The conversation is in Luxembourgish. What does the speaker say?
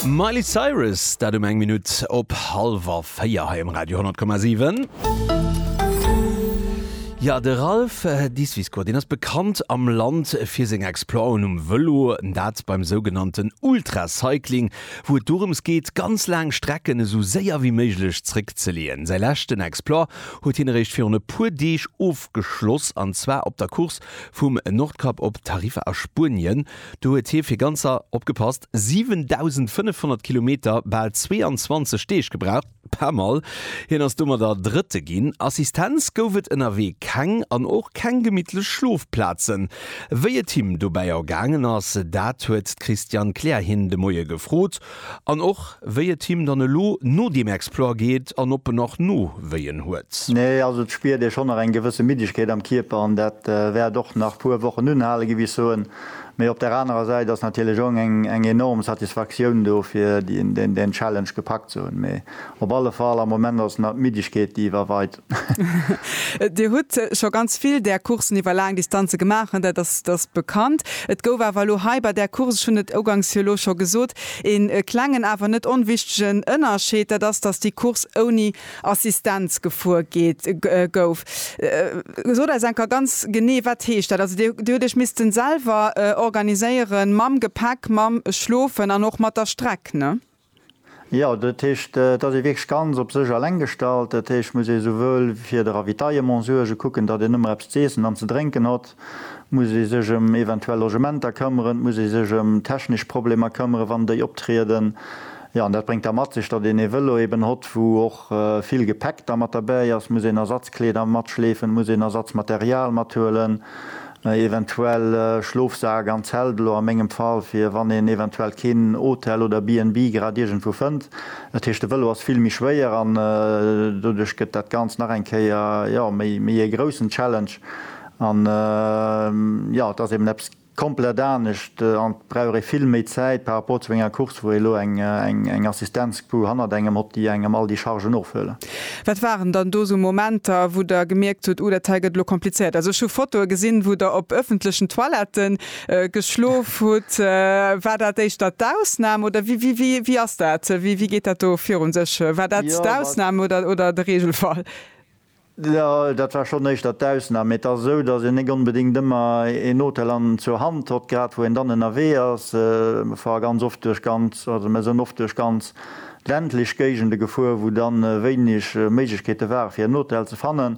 Miley Cyrus, dat um eng Minutt op hallwer véier hei um Radio 10,7. Jo, de Ralph Disviscourt, deen ass bekannt am Land fir seng Exploiten um Vëlo, dat beim sougenannten Ultracycling, wou et dorëms geet, ganz laang Strecken esou séier wéi méiglech zréckzeleeën. Säi leschten Exploit huet hien eréischt virun e puer Deeg ofgeschloss, an zwar op der Course vum Nordkap op Tarifa a Spuenien. Do huet hie fir ganzer, opgepasst, 7.500 Kilometer, bal 22 Deeg, gebraucht. Pas mal! Hien ass domadder Drëtte ginn. Assistenz gouf et ënnerwee keng an och keng gemittlech Schlofplazen. Wéi et him dobäi ergaangen ass, dat huet d'Christiane Kleer hien de Moie gefrot. An och wéi et him dann elo no deem Exploit geet an ob en nach Nowéien huet. Nee, also et spiert ee schonn nach eng gewësse Middegkeet am Kierper an dat wäert och nach puer Wochen unhalen, géif ech soen. Mee op der anerer Säit ass natierlech och eng enorm Satisfaktioun do fir deen Challenge gepackt ze hunn. Mee op alle Fall am Moment ass et nach d'Middegkeet déi iwwerweit. Dir hutt scho ganz vill där Courssen iwwer laang Distanze gemaach, dat ass bekannt. Et gouf awer elo hei bei där Course, ech hunn et uganks jo elo scho gesot, ee klengen, awer net onwichtegen Ënnerscheed, dat ass, datt déi Course ouni Assistenz gefuer gouf. Sot eis enker ganz genee, wat heescht dat? Also Dir hutt Iech missten selwer organiséieren, mam Gepäck, mam Schlofen an och mat der Streck, ne? Jo, dat heescht, et ass ee wierklech ganz op sech eleng gestallt. Dat heescht, et muss ee souwuel fir de Ravitaillement suergen, kucken, datt een ëmmer eppes ze iessen an ze drénken hott, et muss ee sech ëm eventuell Logementer këmmeren, et muss ee sech ëm technesch Problemer këmmeren, wann déi optrieden. Jo, an dat bréngt da mat sech, datt een ee Vëlo eeben hott, wou och vill Gepäck da mat derbäi ass, muss een Ersatzkleeder matschleefen, muss een Ersatzmaterial mathuelen. Mä eventuell Schlofsak an Zelt, elo a mengem Fall, fir wann een eventuell keen Hotel oder BNB grad iergendwou fënnt. Dat heescht de Vëlo ass vill méi schwéier an doduerch gëtt dat Ganzt nach eng Kéier, jo, méi ee groussen Challenge. An, jo, et ass eben eppes komplett anescht an et brauch ee vill méi Zäit par rapport zu enger Course, wou ee elo eng Assistenzcrew hannert engem hott, déi engem all déi Chargen ofhuelen. Wat waren dann do esou Momenter, wou Der gemierkt hutt, oh, dat hei gëtt elo komplizéiert? Also ech hu Fotoe gesinn, wou Der op ëffentlechen Toilette geschlof hutt. War dat éischter d'Ausnam oder wéi ass dat, wéi geet dat do virun sech? War dat d'Ausnam oder de Reegelfall? Jo, dat war schonn éischter d'Ausnam. Mee et ass esou, datt een net onbedéngt ëmmer een Hotel an zur Hand hott, grad wou een dann ënnerwee ass. Mer fare ganz oft duerch ganz, also mer sënn oft duerch ganz ländlech Géigende gefuer, wou dann wéineg Méiglechkeete ware fir en Hotel ze fannen.